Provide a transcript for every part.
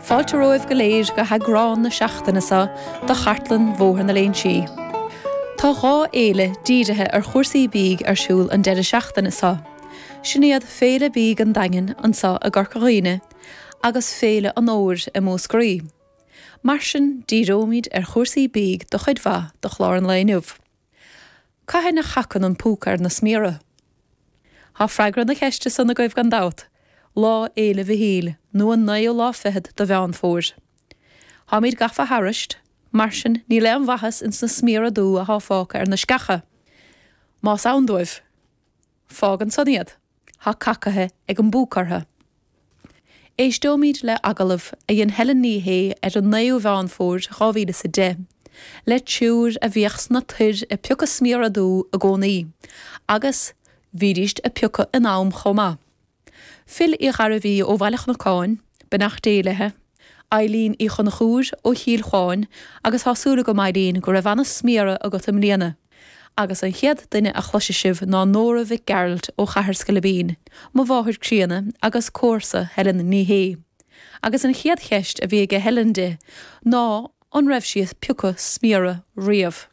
Fáilte romhaibh go léir go heagrán na seachtaine seo de Chartlann Bhóthar na Léinsí. Tá dhá fhéile dírithe ar chúrsaí bídh ar siúl an deireadh seachtaine seo. Sin iad Féile Bídh an Daingin anso i gCorca Dhuibhne agus Féile an Fhómhair i Múscraí. Mar sin, díreoimid ar chúrsaí bídh do chuid mhaith do chlár an lae inniu. Cathain a chacann an púca ar na sméara? Tá freagra na ceiste san agaibh gan dabht, Lá Fhéile Mhichíl, nó an naoú lá fichead de Mheán Fómhair. Táimid gafa thairis, mar sin níl aon mhaitheas ins na sméara dubha atá fágtha ar na sceacha, más ann dóibh. Fág ansan iad. Tá cacaithe ag an bpúca orthu. Éisteoimid le agallamh a dhein Helen Ní Shé ar an 9ú Mheán Fómhair 2010 le triúr a bhíodh sna toir ag piocadh sméara dubha i gcónaí agus bhídíst ag piocadh in am chomh maith. Phil Uí Ghairbhí ó Bhaile an Chnocáin, beannacht Dé léithi, Eileen Uí Chonchúir ó Chill Chuáin agus tá súil agam Eileen go raibh ana-sméara agat i mbliana. Agus an chéad duine a chloisfidh sibh ná Nóra Mhic Gearailt ó Chathair Scoilbín, mo mháthair críonna agus comharsa Helen Ní Shé. Agus an chéad cheist a bhí aige Helen di ná an raibh sí ag piocadh sméara riamh.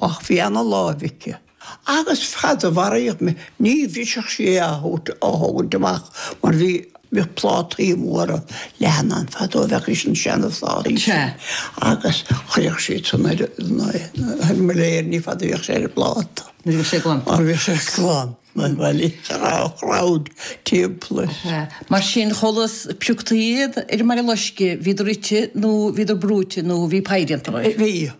Ach bhí ana-láimh aici, agus fad a mhairfidh mé, ní bhrisfeadh sí é á thabhairt, á thógaint amach, mar bhí, bhíodh plátaí móra leathana ann fadó a bheadh ins na seanphlátaí sin, agus chuirfeadh sí san ar an mbilléar, ní fada a bhíodh sé ar an bpláta, nuair a bhíodh sé glan, mar bhíodh sé glan, mar bhailíodh sé an tsráid timpeall air. Mar sin, chomh luath is a pioctaí iad ar an mBaile Loiscthe, bhíodar ite nó bhíodar brúite nó bhí pie déanta. Bhíodh.